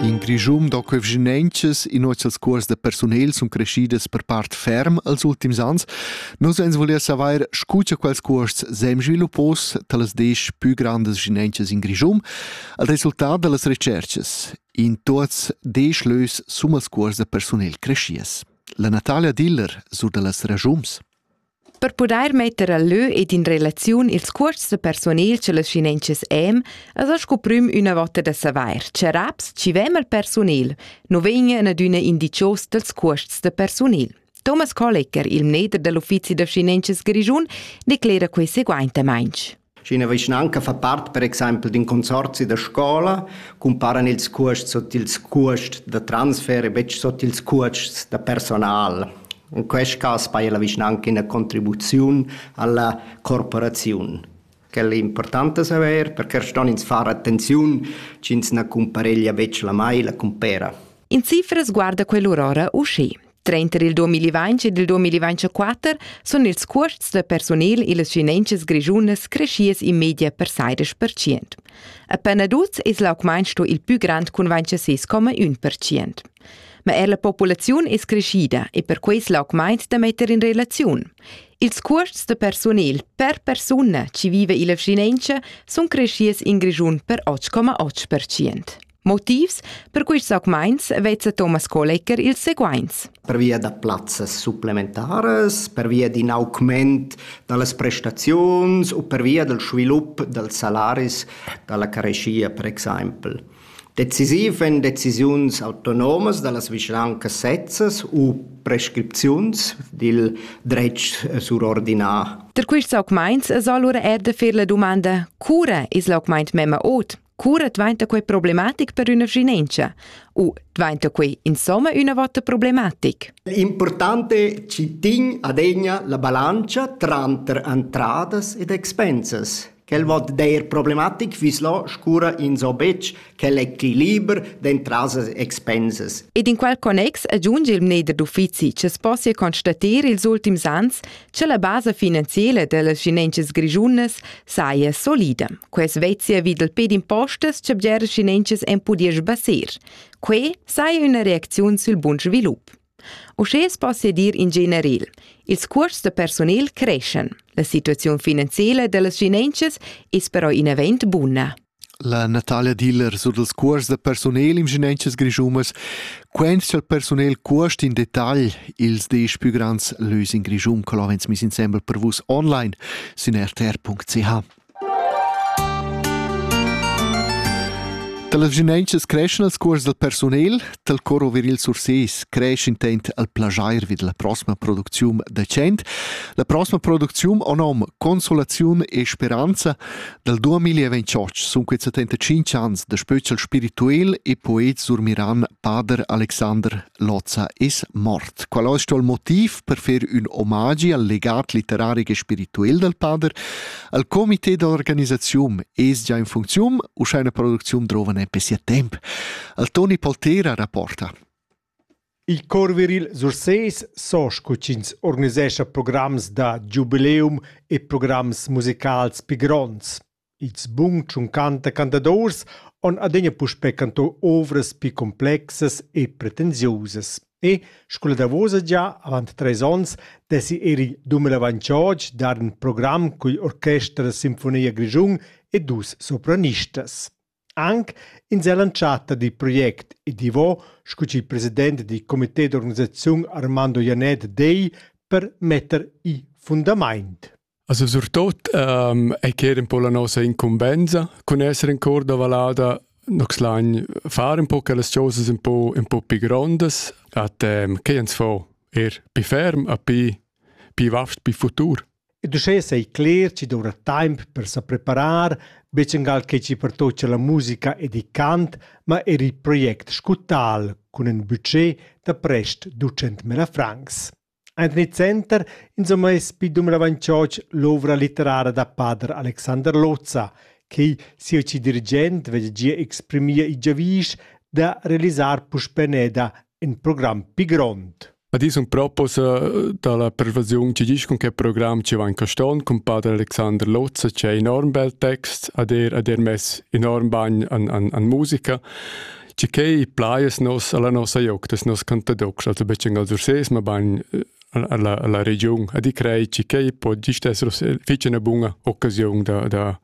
In Grischun da convegnientschas in nossas cuors da persunel sun crescidas per part ferm als ultims ans. Nus ans volia saver scu cha quels cuosts sem sviluppos talas desch pü grandas gnientschas in Grischun al resultat da las recerchas. In tuots desch lös summas cuors da persunel crescias. La Natalia Diller sur da las ragiums. Per pudair metter a lö ed in relaziun ils cuosts persunels e las finanzas em, es el sco prüm üna vota da savair, cha raps chi ven al persunel nu vegnan adüna indichos dals cuosts da persunel. Thomas Kollecker, il mneder da l'uffizi da finanzas grischun, declera que seguaintamaing. Sch'ina vischnanca fa part per exempel d'in consorzi da scola, cumparan ils cuosts sut ils cuosts da transfer e betg sut ils cuosts da personal. In quest cas paja la vischnanca ina contribuziun alla corporaziun. Quella è importanta saver, perché ston ins far attenziun sch'ins na cumpareglia betg la mai la cumpera. In cifras guarda quell'urora uschè. Trenter il 2020 ed il 2024 sun ils cuosts da personel illas finanzas grischunas creschias in media per sairas percient. Appena tuts es l'augmaint sto il pü grand cun 26,1%. Ma er la populaziun es creschida e per quei l'augmaint da metter in relaziun. Ils cuosts da personel per persuna chi vive illa finanza sun creschias in Grischun per 8,8%. Motivs per quests augmaints vezza Thomas Kolecker ils seguaints. Pervia da plazzas supplementaras, pervia d'in augment da las prestaziuns u pervia dal svilup dals salaris da la careschia, per exempel. Decisiv èn decisiuns autonomas da las vischnancas sezzas u prescripziuns dil dretg surordinà. Da quests augmaints es alura er da fer la dumanda, cura es l'augmaint memma ot? Cura dvainta quei problematic per üna vschinentscha? U dvainta quei insomma üna vota problematic? L'importante ci tin adegna la bilancia tranter entradas ed expensas. Quel vot der problematic vislo scura in so bec quel equiliber d'entradas e expensas. Ed in quel connex aggiunge il mneder d'uffizi che sposia constater ils ultims ans Che la basa finanziela dellas schinenchas grischunas saja solida. Quest vezia vi dal ped impostas che bgeras schinenchas en pudia sbassir. Quei saja üna reacziun sul bun svilup. Uschè es dir in general. Ils cuors da personel creschan. La situaziun finanziela dellas schinenchas es però in event buna. La Natalia Diller sur dals cuors da persunel in vischinanzas grischunas quentscha il persunel cuost in detagl ils desch pü grands lös in Grischun co l'avens miss insembel per vus online sün rtr.ch. Dalas vischinanzas creschan els cuors dal persunel, tal coro viril Surses cresc intent al plagiair vid la prossima producziun decent. La prossima producziun o nom Consolaziun e Speranza Dal 2028 sun quets 75 ans da spöchel spirituel e poet surmiran pader Alexander Lozza es mort. Qual es sto il motiv per fer ün omagi al legat literario e spirituel dal pader? Al comité d'organisaziun es già in funziun u scha una producziun drova ne per sia temp? Al Toni Poltera rapporta. Il chor viril Sursés so sco ch'ins organisescha programs da giubileum e programs musicals pli gronds. Il sbun tschuncanta cantadors han adina puspè cantà ovras pli complexas e pretensiusas. E sco la davosa gia avant trais onns dessi er il 2022 dar in program cun l'orchester Sinfonia Grischun e dus sopranistas. Anc in seall'entschatta dil project ed Ivo sco ch'il president dil comité d'organisaziun Armando Janett dei per metter i fundament. Also surtut ähm, ei ch'era un po la nossa incumbensa cun esser in cor da valada Nox lain far un po che las cosas un po, un po più grandes, a tem che ens fo er più ferm, a più, più vast, più futur. Ed uschè sai cler chi doura temp per sa preparar, be changal che chi pertocha la musica ed il cant, ma eir il project Scutal cun ün budget da prest 200.000 francs. Anthony Center insomma es pi dumravantschotsch l'ouvra litterara da pader Alexander Lozza, che sia ci dirigent veglia gia exprimir il giavüsch da realisar puspè neda in program pli grond. Ed io sun propos da la pervasiun chi disch cun che program chi van caston cun pader Alexander Lozza c'è enorm bel text, ad er, ad er mess enorm bagn an, an, an musica. Ci che plaies nos alla nossa joc, des nos cantadox, also becen al Surses, ma bagn alla, alla regiun. Ed i crei ci che po gist esser fece una bunga occasione da, da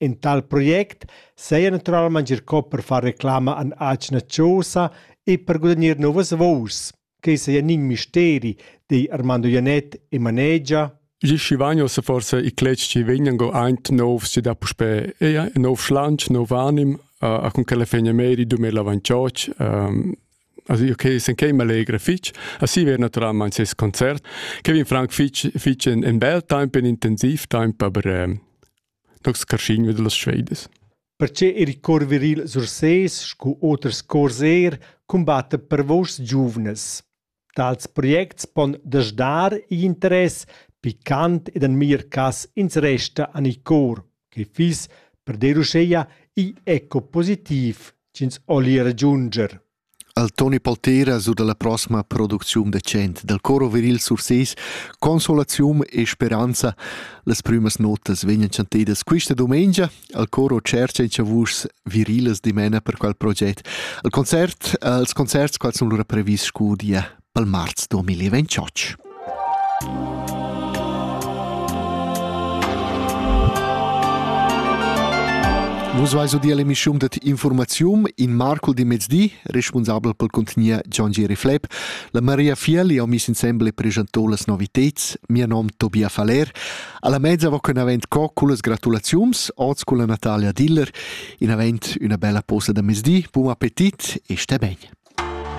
In tal project saja naturalmaing ir cò per far reclama an atgna chosa e per gudagnir nouvas vouers. Quai saja nin misteri, di Armando Janett, il manager. Gli Schivagno se forse i cleci ci vegnan go aint nov si da puspè ea nov schlantsch, nov anim, uh, a con che le fegne meri 2028, um, Also io che sen che m'allegra fich, assi ver naturalmaing ses concert. Kevin Frank fich fich in, in bel temp, in intensiv temp, aber ähm, nox carschigno de las Schweides. Perche il cor viril sur ses scu oters cors er combatta per vos giuvnes. Tals projects pon dasdar i interess, picant ed en mir cas ins resta an i cor. che fiss per dir uscheia igl eco positiv ch'ins olli ragiunger. Al Toni Poltera su dalla prossima producziun decent dal Coro Viril Surses Consolazium e Speranza las prümas notas vegnan chantedas quista domengia al Coro Cercia in Chavus virilas dimena per quel proget. Al concert, als concerts quals sun lura previs scudia Pel marz 2028. Vus vais udir l'emissiun dat informaziun in Marco di mezdi, responsabel pel contenier John Geri Flepp. La Maria Fieli ho mis insembel e preschantò las noviteds. Mio nom Tobia Faller. Alla mezza va con avent co culas gratulaziuns, oz con la Natalia Diller, in avent una bella posa da mezdi, buon appetit e stai bene.